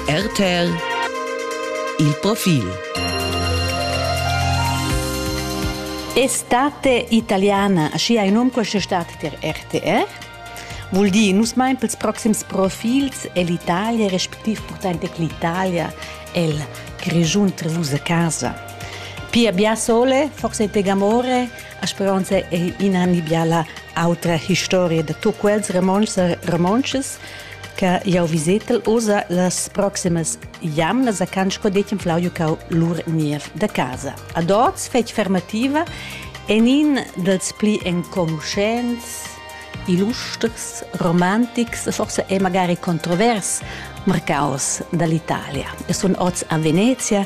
RTL Il profil Estate italiana, schi hai num questa estate per RTR. Vuol dire, nus mein pels proxims profilsell'Italia, respectiv portante che l'Italia è il Grigiun Treus a casa. Pia bia sole, forse te gamore, a speranza è in anni biala autra historia da tu quels romances, romances che jau visetel usa las proximas jamnas a can sco detg flau jucau lur niev da casa. Ad oz fetg fermativa en in dels pli enconuschents illustrs, romantics e forse è magari controvers marcaus dall'Italia. E sono oz a Venezia,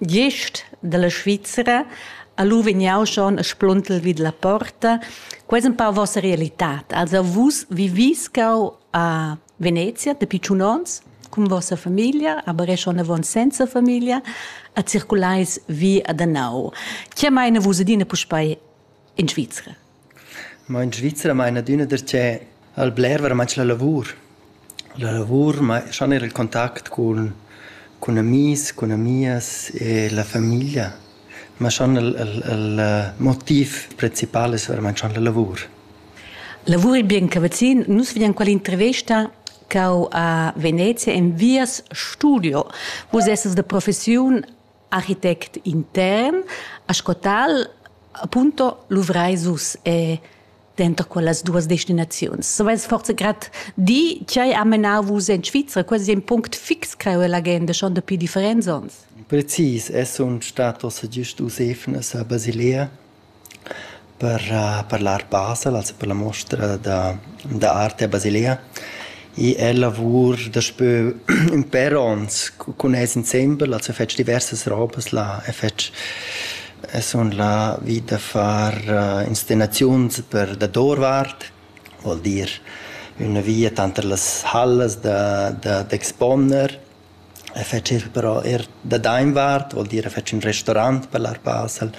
Gist dalla Svizra ha lu vegniu schon a spluntel vid la porta. Quei es empau vossa realitad. Also vus vivis cau a Venezia dapi tschun onns cun vossa famiglia, aber è schon avon senza famiglia, a circulais vi ad anau. Che meina vus adina puspei in Svizra? Ma in Svizra meina adüna darcheu al bler veramaint la lavur. La lavur ma schon eir il contact cun cun amis, cun amias e la famiglia. Ma schon il il il motiv principal es veramaint schon la lavur. Lavur il bien cavazzin. Nus vegnan quella intervesta cau a Venezia enviers studio. Vus essas da professiun architect intern, a sco tal appunto luvrais us e denter quellas duas destinaziuns. Savais forse grad di che ha menau vus en Svizra? Quasi è un punct fix creo l'agenda schon dapi differents onns. Precis, es un status giust usefna sa Basilea Per per la arpasa, lasa per la mostra da da arte a Basilea i è lavur daspö ün pèr ons cun els insembel, lasa fetsch diversas robas là e fetsch e sun là vi da far inscenaziuns per dadorvart, vuol dir üna via tanter las hallas da da d'exponer. E fetschiel però eir da dainvart, vuol dir fetsch ün restorant per l'ar pasel,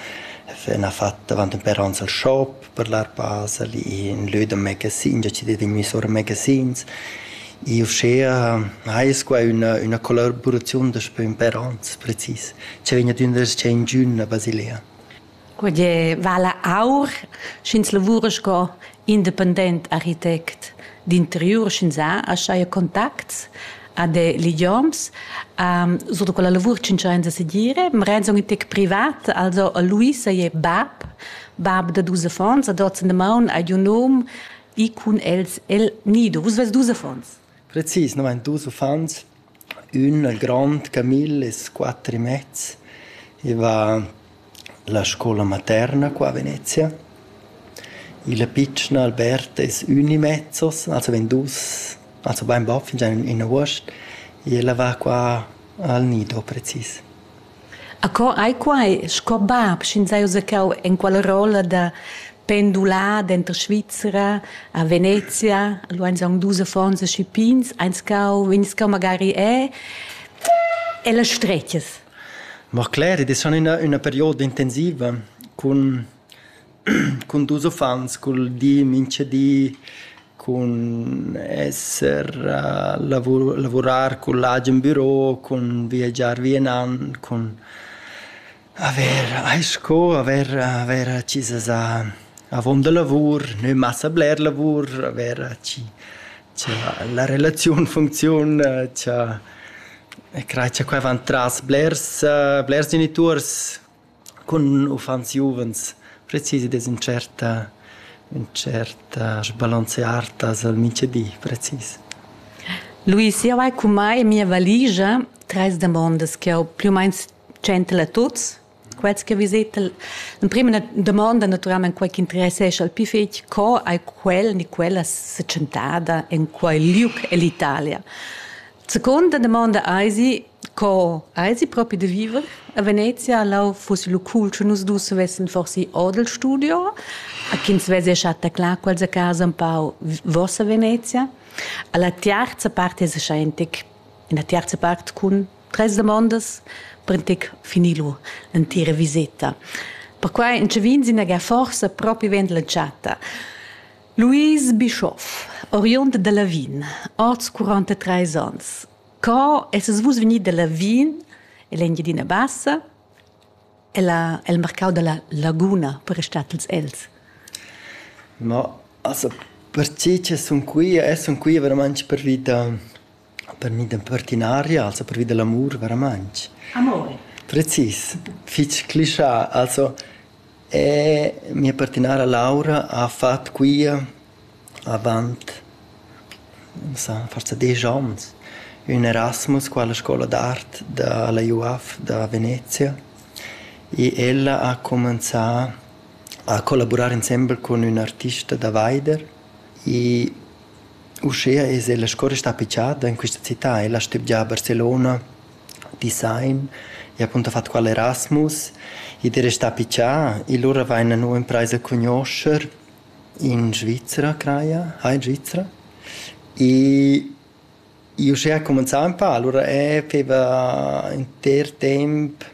ün ha fat davant ün però ans al shop per l'ar pasel, ün lö da megasin, già chi d'he vegni sur a megasins. I uschea ais qua üna üna collaboraziun daspö ün per ons precis, cha vegn ad üna reschia ingün a Basilea. Quei vala aur, sch'ins lavura sco independent architect d'interiur, sch'ins ha aschia contacts a de ligioms. sur da quella lavur tschintschains a segir. Marein sun in tec privat, also a Luisa è bab, bab da dus affons, ad hoz in damaun hai giu nom e cun els el nido. Vus veis dus affons? Precis, no vain dus uffants. Ün grond camil es quatter e mez. I va la scoula materna qua a Venezia. Il pitschen Albert es ün e mezzos, also vegn dus, also bainbod fingià in üna vuost. E el a va qua al nido precis. Acco ei quei sco bab, sch'ins ha uzacchau enquala rolla da pendular denter Svizra a Venezia. Lu ein aunc dus affons aschi pigns, eins cau, vegns cau magari e e las stretgas. Mo Cler, id es schon üna üna perioda intensiva cun cun dus uffants cul di mincha di cun esser lavurar cun l'agen büro cun viagiar vi e nan cun avair ais sco avair avair accisas a avon da lavur nü massa bler lavur avair chi cha la relaziun funcziun cha e crai cha quai vant tras blers blers genituors Cun uffants giuvens precis ed es ün tschert ün tschert sbalanzé artas al mintgadi precis. Luis, jau hai cumai en mia valigia trais damondas ch'jau plü u main tschentel a tuts. Quels che visetel l'emprima na damonda natüralmaing quai ch'interessescha il pü fich, co hai quel ni quella se tschentada in quai liug ell'Italia? Seconda domanda eisi co eisi propi da viver a Venezia lau fuss lu cool sche nus dus vessen forsi odel studio a ch'ins vesi chatta clar quels a casa un pau vossa Venezia alla tiarza part es scheintec in la tiarza part cun tres domandas per intec finilu l'entira viseta perquai in che vin sin ga forsa propi vend la chatta Louise Bischoff, oriund da Lavin, oz 43 ans. Co essas vus vegnì da Lavin en l'Engiadina Bassa? Ella, el marcau dalla laguna per restatels els. Ma, also, per tgi che sun qui, e sun qui veramente per vita Per mi d'impertinaria also pervi da l'amur varamaing. Amor. Precis, fich clischà. Also mia pertinara Laura ha fat quia avant sa forsa desch ons ün Erasmus qua alla scoula d'art da la UAF da Venezia e ella ha cumanzà a collaburar insembel cun ün artista da vaider I uschea es la scoula stada pichada in quista città. Ella stübgia a Barcelona, Design, i ha appunto fat qual Erasmus. Id es restà pichà. I lura vaina nu imprais a cugnuoscher in Svizra craja, ha in Svizra. I Io uschè cumenzà ün pa, alura eh feva inter temp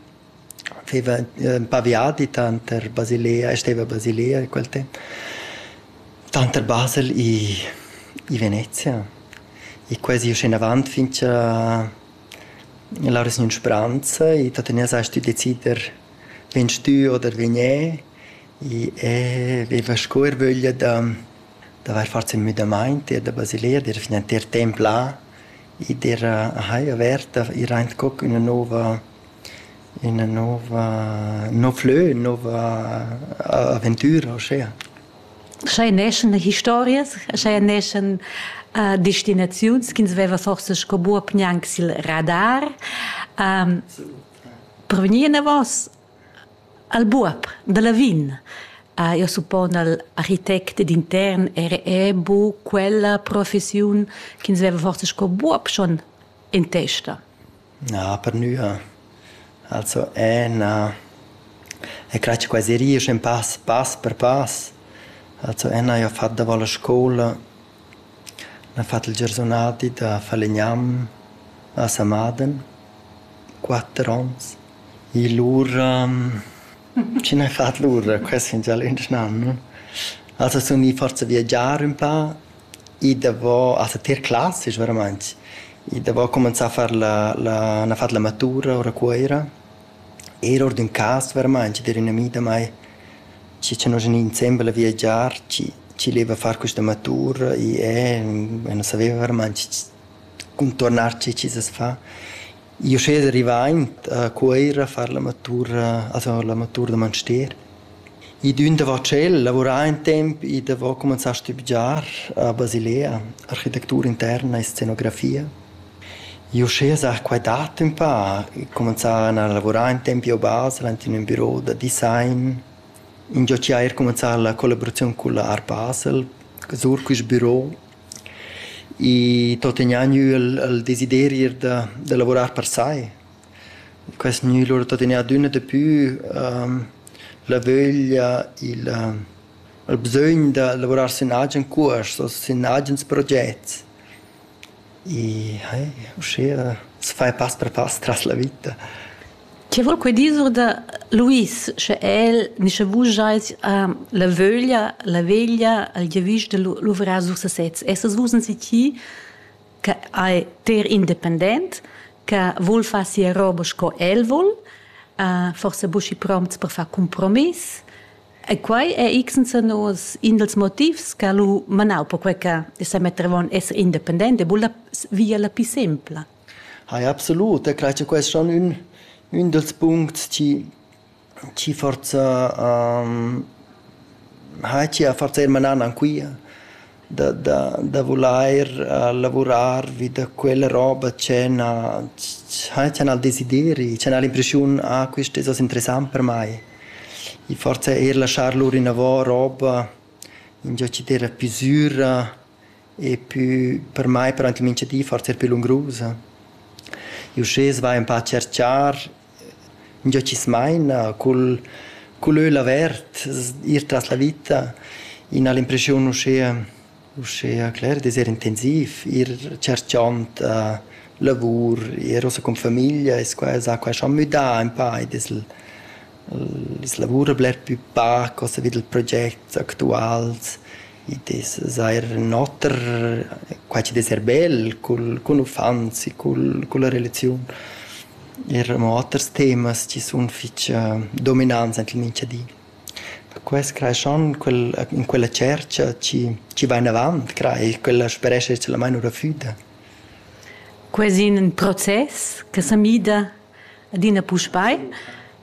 feva ün pa viadi tanter Basilea e steva a Basilea in quel temp, tanter Basel i i Venezia e quasi usché inavant fin cha lauras gnün spranza e da tegner sai stü decider vegn stü oder vegn e e veva sco ervöglia da d'avair fat ün müdamaint, ir da Basileia, d'ir fin entir temp là, e d'ir a haja averta, ir aint co ch'üna nouva üna nouva ün nouv lö, ün nouva aventüra uschea. Scha i neschan historias, scha i neschan destinaziuns ch'ins veva forsa sco buob gnanc sil radar per vegnir inavos Al buob da Lavin ha jeu suppon al architect ed intern era era bu quella professiun ch'ins veva forsa sco buob schon en testa. Na, per nua. Also è na... E crai che quasi ries in pass, pass per pass. Also è na, io ho fatto davant la scola, ho fatto il giornonati da falegnam a Samaden, quatter onns. I lura, chi n'he fat lura? Quest fin gia lönch nan, no? Also sun i forsa viagiar ün pa, i davò, also tier classics veramaint, i davò cumanzà a far la la n'ha fat la matura our a Cuoira, eir our d'ün cas veramaint, d'eira ün ami da mai chi cha nos gnü insembel a viagiar, chi chi leva far quista matura, i e, e nu saveva veramaint cun turnar chi chi's as fa. Io schez rivaint a Cuoira a far la matura a far la matura da manster. I d'ün davo tschel lavurà ün temp, i davo cumanzà a stübgiar a Basilea architectura interna e scenografia. Io schez a quai dat ün pa, cumanzà a lavurar ün temp io a Basel ant in ün büro da design, ingio chi haja eir cumanzà la collaboraziun cul Art Basel sur quist büro. I tuttegna gnü il il desiderir da da lavurar per sai. Quest gnü lura tuttegna adüna dapü la vöglia, il il bsögn da lavurar sün agen cuors o sün agens progets. I uschea s'fa pass per pass tras la vita. Che vul quei dir sur da Luis, sche el ni sche vus schais uh, la vöglia, la veglia, il giavisch de luvrar sur sesez. Essas vus in siti che è ter independent, che vul far sia roba sco el vul, uh, forse buschi prompts per far compromiss. E quai è x nos in dels motivs che lu manau per quei che se mettevon essere independente, vull via la più sempla. Hai absolut, e crei che quest es schon ün ün dals puncts chi chi forsa ha chi ha forsa eir manan anquia da da da vulair lavurar vi da quella roba che na cha n'ha'l desideri, cha n'ha'l l'impreschiun ah quist es hoz interessant per mai. I forsa eir laschar lur inavo roba ingio chi d'eira pü süra Eppü per mai parent minchadi forsa er pü lungrusa. Uschè s'va ün pa a tscherchar ingio chi's maina cul cul l'öil avert, ir tras la vita. I n'ha l'impreschiun uschea uschea cler d'es eir intensiv, ir tscherchand lavur, ir ussa cun famiglia es quai sa quai scha müdà ün pa ed es il il lavur bler pü pac, ussa vi dal proget actuals. Id es seir ün oter, quai chi'd es eir bel cul cun uffants e cul culla relaziun. Eir amo oters temas chi sun fich dominants aint il mincha di. Perquai creeschan quel in quella tschercha chi chi va inavant, crai, quella sperescha talmain our da füda. Quai es ün process che sa mida adina puspei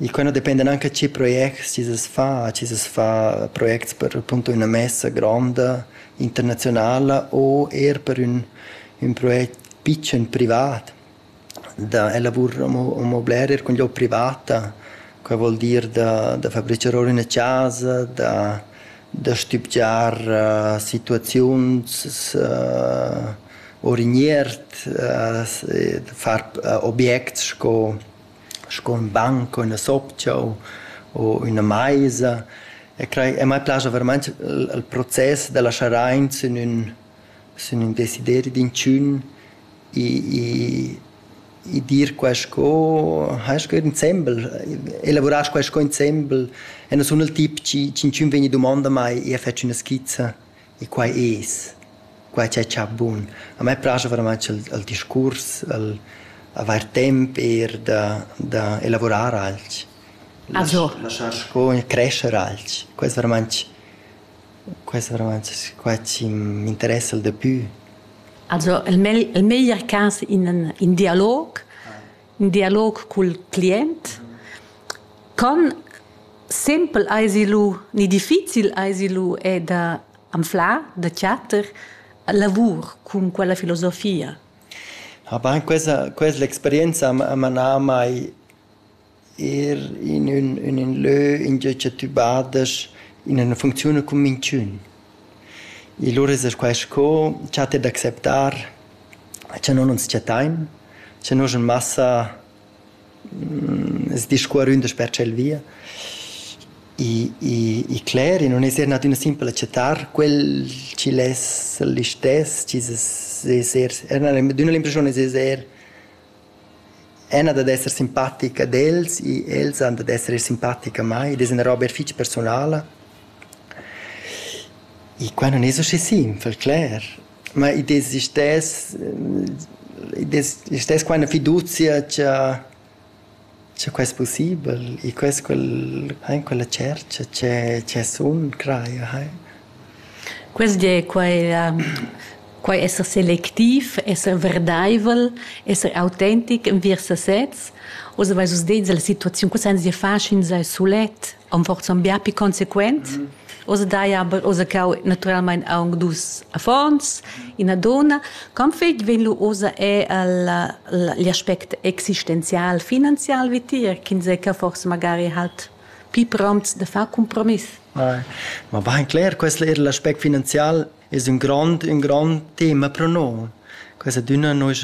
E quei no dependa anche a tgei projects ti sas far, a tgei sas far projects per appunto üna messa gronda internazionala o eir per ün ün project pitschen privat. Da elavurer amo amo bler eir cun glieud privata, quai vuol dir da da fabrichar our üna chasa, da da stübgiar situaziuns our in iert, far objects sco sco ün banc u üna sopcha u u üna maisa e crei e mai plascha veramaint il process da laschar aint sün ün sün ün desideri d'intschiun i i i dir quai sco hai sco id insembel elavurar quai sco insembel e na sun il tip chi ch'inchün vegni dumanda mai e fetsch üna skizza E quai es, quai cha cha bun. A me plascha veramaing il il discurs, il avair temp eir da da elavurar alch. Also. Laschar sco crescher alch. Quai es veramaing quai es veramaing quai chi m'interessa il dapü. Also il mel il meglier cas in ün dialog in dialog cul client. Con simpel eisi lu ni difficil eisi lu è da anflar, da chatter lavur cun quella filosofia. Ah ben, questa, questa l'esperienza ha manà mai er in, un, in, in lö in che tu badas in una funzione con minchun. E lura es quai sco cha t'he d'acceptar, cha no nun s-chattain, cha no sun massa sdiscuoründas per tschel via. I i i cler, i nun es eir nat üna simpla chattar, quel chi'l es l'istess, chi's es es eir, d'üna l'impressiun es eir Ena dad esser simpatica ad els e els han dad esser eir simpatica a mai ed es üna roba fich persunala. E qua nun es usché simpel, cler. Ma id es istess, id es istess qua üna fiduzia cha Sche quei es pussibel e quels quel han quella tschercha tgè tgè sun crai ahai. Quest di è quai quai esser selectiv, esser verdaivel, esser autentic enviers sesez. Oz aveis vus dit la situaziun, co sainz dir far, sch'ins ei sulet. am forsan bia pi consequent. Oz daja oza cau naturalmein aunc dus affons, ina donna. Con fetg vegn lu oza è agl aspect existenzial, finanzial vitier, ch'ins è che forse magari halt pi prompts da far compromiss. Ma va cler, questo er l'aspect finanzial es un grond, un grond tema pro noi. Questa dünna noi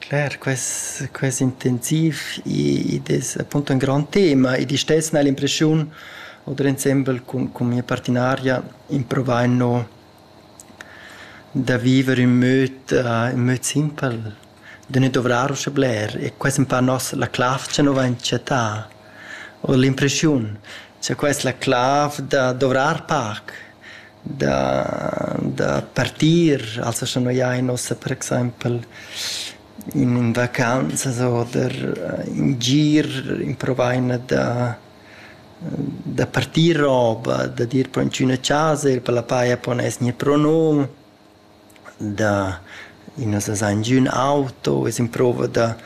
Cler, quest quest intensiv id es appunto ün grand tema ed i stess n'ha'l l'impreschiun oder insembel cun cun mia partinaria improvain no da viver ün möd ün möd simpel, da nu dovrar uschè bler e quest ün pa nos la clav cha nu vain chattà o l'impreschiun cha quai es la clav da dovrar pac. da da partir, also scha noi ain uossa per exaimpel in in vacanzas oder in gir improvaina da da partir roba, da dir po in d'üna chasa, ir pa la paja, po gnir pro num. da ün as desa ingio ün auto, es improvo da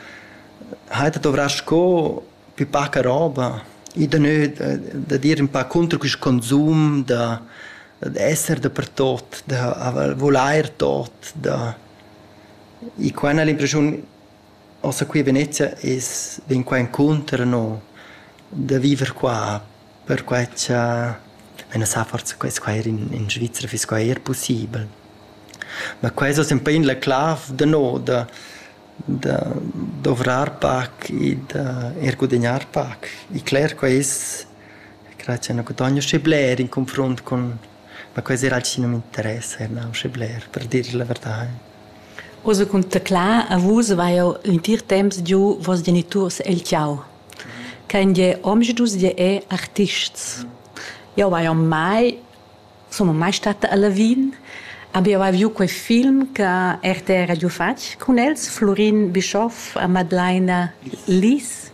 haider dovrà sco pü paca roba, i da nö da dir ün pa cunter quist consum, da esser dapertot, da vulair tot, da... I qua al l'impresiun Ossa qui a Venezia es vegn qua encunter no da viver qua perquai cha ün as sa forsa quest qua eir in in Svizra fiss qua eir pussibel. Ma quai es hoz ün pain la clav da no da da dovrar pac e da eir gudagnar pac. E cler quai es, craja cha nu gudogna schi bler in confrunt cun Ma quei serà alch chi nu m'interessa e nauscha bler, per dir la verdà. Ussa cun teclar a vus vai jeu l'entir temps giu vos geniturs el tgau. Kein je omschdus je è artists. Jeu vai mai sun mai stata a Lavin, aber jeu hai viu quei film che RTR ha giu fatg cun els, Flurin Bischoff a Madlaina Lis.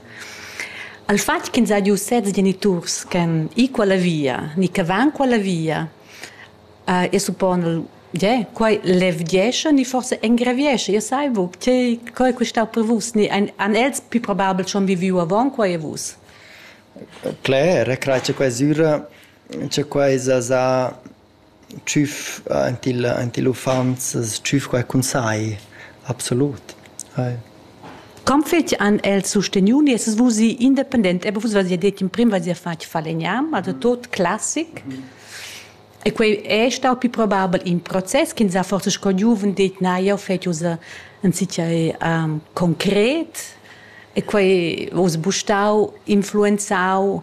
Al fatg ch'ins ha giu sez geniturs ch'han ì quella via ni che van quella via, e suppon el, gie, quei levgiescha ni forsa engraviescha, jeu sai buc, tgei, co ei quei stau per vus, ni ein, han els pli probabel schon viviu avon quei e vus? Cler, e crai che quei sura, che quei sa sa tschüf aint il aint il uffants tschüf quai cun sai, absolut. Com fetsch han els susteniu nies vusi independent? Ebe vus vus detg in prim vus ja fatg falegnam, also tot classic. E quei è stau più probabel in process ch'ins ha forsa sco giuven detg na, jeu fetsch ussa in sitgei concret. E quei vus bu stau influenzau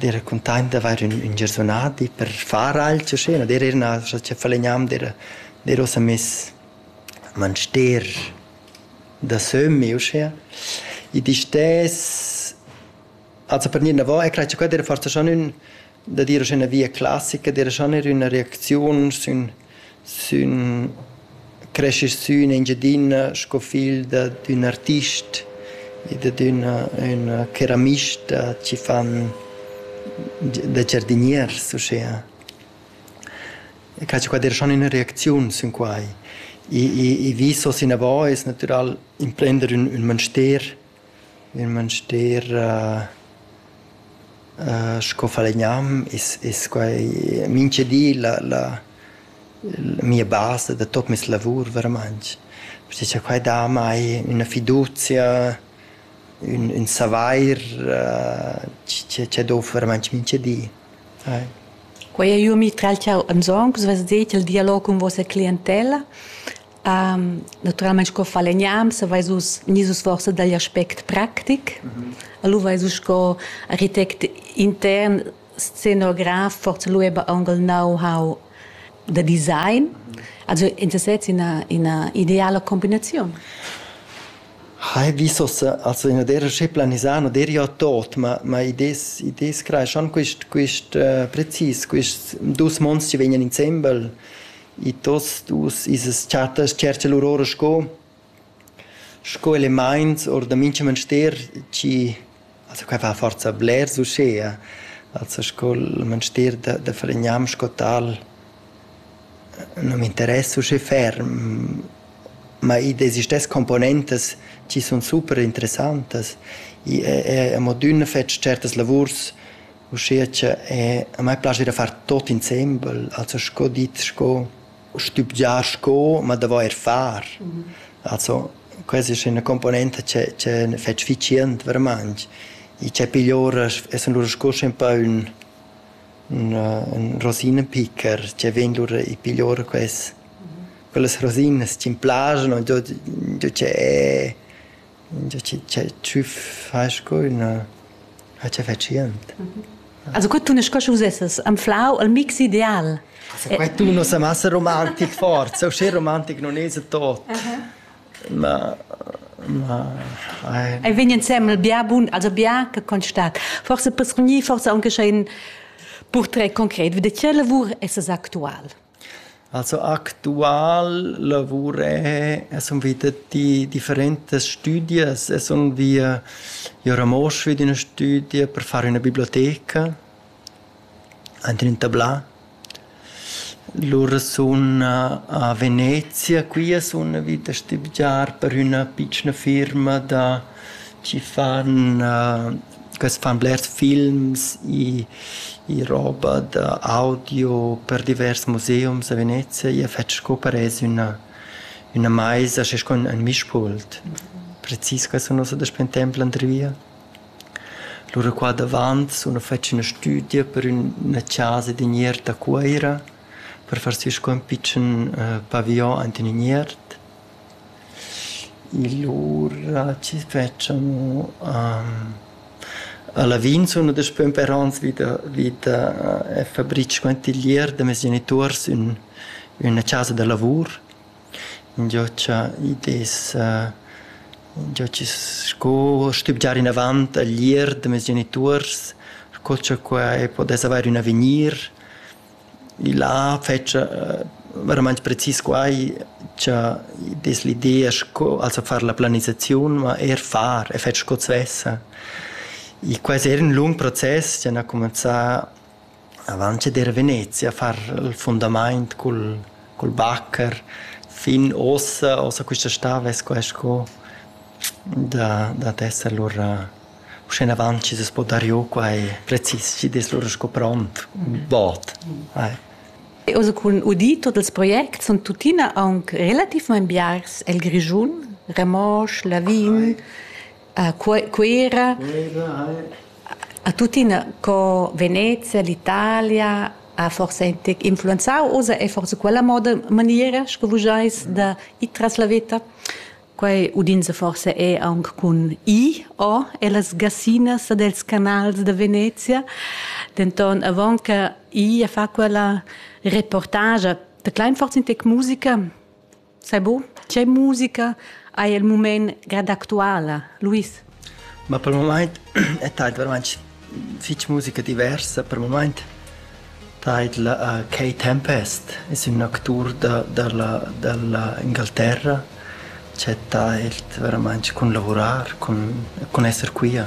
d'eira cuntaint d'avair ün ün giarsunadi per far alch uschè, no d'eir na cha falegnam d'eira d'eir uossa miss a Manster da sömmi uschea. I distess also per gnir inavo e crai cha quai d'eira forsa schon ün da dir uschè üna via classica, d'eira schon eir üna reacziun sün Sün creschi sün Engiadina sco figl da d'ün artist e dad üna üna ceramista chi fan da giardiniers uschea. E cazzo qua der schon üna reacziun sün quai. I i i vis hoz inavo es natüral imprender ün ün manster Il manstier sco falegnam es es quai mincha di la la mia basa da tuot meis lavur veramainch, perche cha quai dà amai üna fiduzia, ün ün savair chi chi dovr veramainch mincha di. Quai eir eu mi tragl ch'eau ans hong, vess dit, il dialog cun vossa clientella Naturalmein sco falegnam saveis vus ni vus forsa dagl aspect practic. Mm -hmm. Lu veis vus sco architect intern scenograf forsa lu eba angal know-how da design. Also in sesez ina ina ideala combinaziun. Hai visos also in der che planisano der ja tot ma ma idees idees crai schon quist quist uh, precis quist dus monstri vegnan insembel I tuots dus isas chattas tschercha lur ora sco sco elemaints our da mincha manster chi also quai fa forsa blers uschea, also sco'l manster da da fregnam sco tal nu m'interess uschè ferm, ma id es istess componentas chi sun super interessantas. I è è amo d'üna fet tschertas lavurs Uschia che a mai plascha da far tot insembel, also sco dit, sco stübgiar sco, ma da voer far. Also questa es üna componenta che che fetsch efficient vermaint. I c'è pigl ora es lura sco schi ün pö ün ün rosinenpicker che vegn lura i pigl ora quest. Quellas rosinas chi'm plaschan, do do che Tü fast co üna acciaffacient. Also co tunas co ch'us essas anflau al mix ideal. Quai tuna sa massa romantic forza, uschè romantic non esa tot. Ma ma ei vegn insemmel bia bun, also bia che constat. Forse per sgnir, forse anche schon in purtret concret, wie die lavur es es actual. Also actual lavur è, e sun vita di differentas stüdias e sun via i a Ramosch vi d'üna stüdia per far üna biblioteca aint ün tablà. Lura sun a Venezia, quia sun vit a stübgiar per üna pitschna firma da chi fan quels fan blers films i i roba da audio per divers museums a Venezia. Ia fetsch sco parez üna üna maisa schi sco ün mischpult. Precis quai sun ussa daspö ün temp l'andri via. Lura qua davant sun ussa fetsch üna stüdia per üna chasa d'iniert a Cuoira per far sü sco ün pitschen paviglion aint in iniert. Lura chi s'fetscha amo a Lavin sunu daspö ün pè ans vi da vi da e fabric quantiglier da meis genituors ün üna chasa da lavur. Ingio cha id es ingio chi sco stübgiar inavant a l'ir da meis genituors, sco cha qua e podes avair ün avegnir. Là fetscha veramaing precis quai cha id es l'idea sco also far la planisaziun, ma eir far e fer sco svessa. Quai es eir ün lung process chi han cumanzà avant che der a Venezia a far il fundamaint cul cul bacher fin uossa, uossa quista stà vess quai sco da dad esser lura Uschenavant chi s'es po dar giò quai precis chi'd es lura sco pront ün bod. Oz cun udir tuot ils projects sun tuttina aunc relativmaing biars el Grischun, Ramosch, Lavin, Cuera, a tuttina co Venezia, l'Italia ha forsa influenzau oz e forsa quella moda maniera sco vus giais da ir tras la veta. Quei udinsa forsa è aunc cun I o ellas gassinas dels canals da Venezia. Denton avon che I a fa quella reportage da klein forza in tec musica, sai bu, c'è musica hai il mument grad actuala. Luis. Ma per mumaint e taid vairamaing fich musica diversa. Per mumaint taid la Kay Tempest, es ün actur da da la da la Ingalterra ch'ha tailt vairamaing cun lavurar, cun cun esser quia.